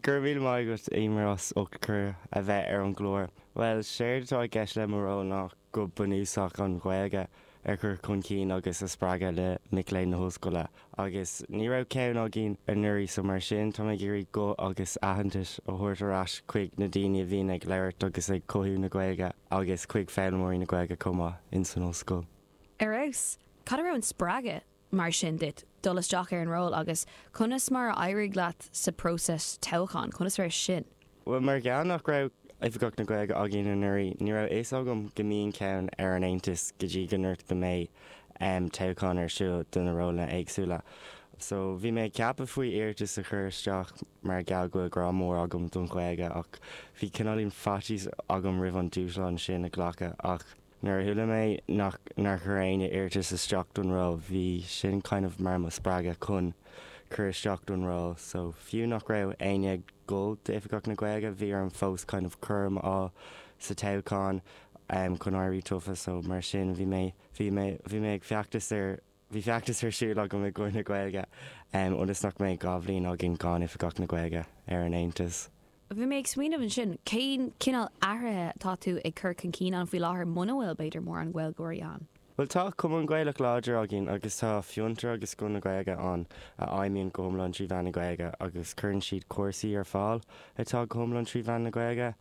Go raibh míle maith agat Éimear as ucht cuireadh a bheith ar an gclár. Bhuel, séard atá i gceist le mo ról ná go bunúsach an Ghaeilge a chur chun cinn agus a spreagadh le mic léinn na hOllscoile. Agus ní raibh ceann againn anuraidh so mar sin táim ag iarraidh guth agus aitheantas a thabhairt ar ais chuig na daoine a bhíonn ag labhairt agus ag cothú na Gaeilge agus chuig foghlaimeoirí na Gaeilge chomh maith insan Ollscoil. Ar fheabhas! Cá raibh an spreagadh? mar sin duit, dul isteach ar an ról agus conas mar a d'éirigh leat sa próiseas toghcháin? Conas a raibh sin? Bhuel, mar gheall nach raibh Oifigeach na Gaeilge againn anuraidh, ní raibh fhios agam go mbíonn ceann ar an Aontas go dtí gur dúradh go mbeidh toghchán ar siúl do na rólanna éagsúla. So, bhí mé ag ceapadh faoi iarratas a chur isteach mar gheall go bhfuil grá mór agam don Ghaeilge ach bhí cineáilín faitíos agam roimh an dúshlán sin a ghlacadh ach, Nuair a chuala mé nár chuir éinne iarratas isteach don ról, bhí sin kind of mar mo spreagadh chun cur isteach don ról. So fiú nach raibh éinne ag dul d'Oifigeach na Gaeilge, bhí orm fós kind of córam a fháil sa toghchán chun éirí tofa. So mar sin, bhí mé, bhí mé ag feachtas ar Bhí feachtas ar siúl agam i gcomhair na Gaeilge, ionas nach mbeidh dhá bhliain againn gan Oifigeach na Gaeilge ar an Aontas. Bhí mé ag smaoineamh ansin, cén cineál athruithe atá tú ag cur chun cinn ann faoi láthair muna bhfuil, b'fhéidir, mórán Gaeilgeoirí ann? Bhuel, tá Cumann Gaelach láidir againn agus tá Fiontar agus Scoil na Gaeilge ann a fheidhmíonn go hiomlán trí mheán na Gaeilge agus cuireann siad cúrsaí ar fáil atá go hiomlán trí mheán na Gaeilge,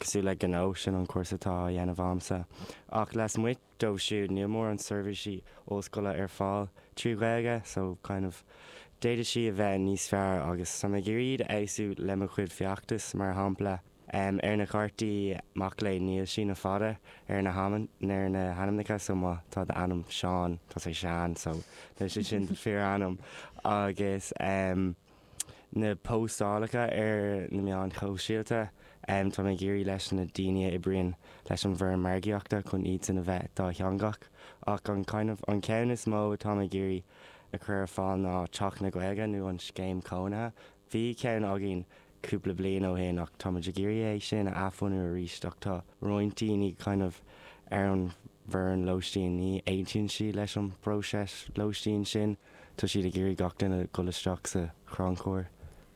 cosúil le Gnó, sin an cúrsa atá á dhéanamh agamsa, ach lasmuigh. dóibh siúd, níl mórán seirbhísí ollscoile ar fáil trí Ghaeilge, so kind of d'fhéadfadh sí a bheith níos fearr agus tá mé ag iarraidh iad a fheabhsú le mo chuid feachtas, mar shampla, em, ar na cártaí mac léinn níl síneadh fada ar na hamanna, ar na hainmneacha, so má tá d'ainm Seán, tá sé sean, so níl sé sin do fíorainm agus, em. na póstálacha ar na meáin shóisialta. Tá mé ag iarraidh leis na daoine a oibríonn leis an bhfoireann margaíochta chun iadsan a bheith dátheangach ach an kind of an ceann is mó atá mé ag iarraidh a chur ar fáil ná Teach na Gaeilge nó an scéim cónaithe. Bhí ceann againn cúpla bliain ó shin ach táimid ag iarraidh é sin a athbhunú arís ach tá roinnt daoine kind of ar an bhfoireann lóistín, ní aontaíonn siad leis an bpróiseas lóistín sin. Tá siad ag iarraidh gach duine dhul isteach sa chrannchur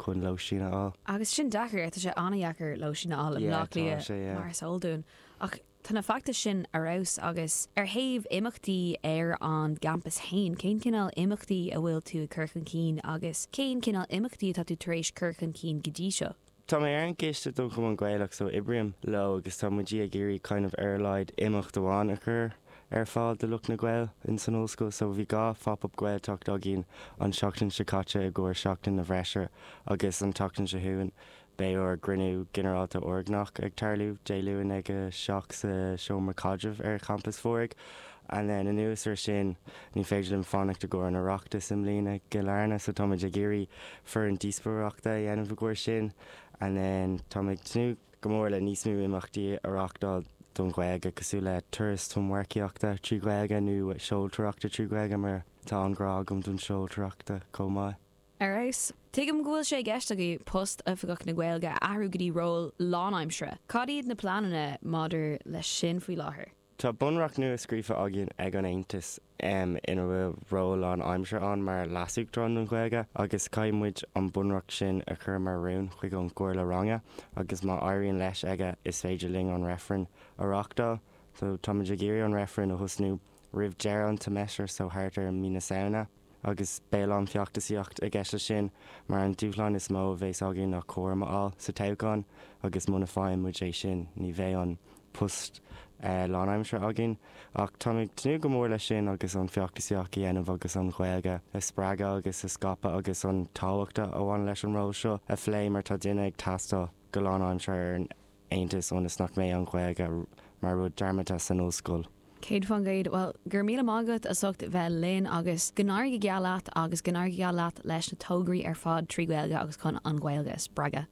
chun lóistín a fháil. Agus sin deacair, tá sé an-dheacair lóistín a fháil i mBleá Cliath mar is eol dúinn. Ach tá na feachtais sin ar fheabhas. Agus ar thaobh imeachtaí ar an gcampas féin, cén cineál imeachtaí a bhfuil tú ag cur chun cinn agus cén cineál imeachtaí atá tú tar éis cur chun cinn go dtí seo? Tá mé ar an gcoiste don Chumann Gaelach so oibrím leo agus tá muid ag iarraidh kind of ar a laghad imeacht amháin a chur ar fáil do lucht na Gaeilge insan ollscoil so bhí dhá Phop Up Gaeltacht againn an tseachtain seo caite i gcomhair seachtain na bhfreisire agus an tseachtain seo chugainn beidh ár gcruinniú ginearálta urghnách ag tarlú Dé Luain ag a seacht sa seomra caidrimh ar champas Mhúraigh And then anuas ar sin, ní féidir liom fanacht i gcomhair an Oireachtais i mbliana, i gCill Airne, so táimid ag iarraidh foireann díospóireachta a dhéanamh i gcomhair sin. And then táim ag tnúth go mór le níos mó imeachtaí a reáchtáil don Ghaeilge, cosúil le turas tonnmharcaíochta trí Ghaeilge nó seoltóireachta trí Ghaeilge mar tá an grá agam don seoltóireachta chomh maith. Ar fheabhas. Tuigim go bhfuil sé i gceist agaibh post Oifigeach na Gaeilge a athrú go dtí ról lánaimseartha. Cad iad na pleananna maidir leis sin faoi láthair? Tá bunreacht nua scríofa againn ag an Aontas um ina bhfuil ról lánaimseartha ann mar leasuachtarán don Ghaeilge agus caithfidh muid an bunreacht sin a chur mar rún chuig an gComhairle Ranga agus má éiríonn leis aige is féidir linn an reifreann a reáchtáil so táimid ag iarraidh an reifreann a thosnú roimh deireadh an tseimeastair so thart ar mí na Samhna agus beidh a lán feachtasaíocht i gceist leis sin mar an dúshlán is mó a bhéas againn ná córam a fháil sa toghchán agus muna bhfaigheann muid é sin ní bheidh an post lánaimseartha againn. Ach táim ag tnúth go mór leis sin agus an feachtasaíocht a dhéanamh agus an Ghaeilge a spreagadh agus a scaipeadh agus an tábhacht a bhaineann leis an ról seo a phlé mar tá duine ag teastáil go lánaimseartha ar an Aontas ionas nach mbeidh an Ghaeilge mar rud dearmadta san ollscoil. 100%, bhuel, go raibh míle maith agat as ucht bheith linn agus go n-éirí go geal leat agus go n-éirí go geal leat leis na tograí ar fad trí Ghaeilge agus chun an Ghaeilge a spreagadh.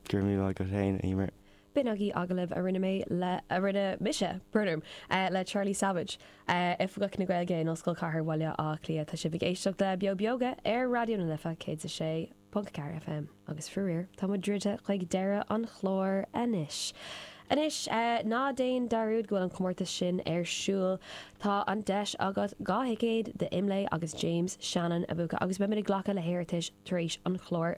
Gur míle agat féin, a Eimear. B'in agallamh a rinne mé le, a rinne mise, brrr, le Charlie Savage, Oifigeach na Gaeilge in Ollscoil Chathair Bhaile Átha Cliath. Tá sibh ag éisteacht le Beo Beoga ar Raidió na Life 106.4 FM agus faraor tá muid druidte chuig deireadh an chláir anois. Anois, ná déan dearúd go bhfuil an comórtas sin ar siúl. Tá an deis agat dhá thicéad d'Imlé agus James Shannon a bhuacadh agus beimid ag glacadh le hiarratais tar éis an chláir.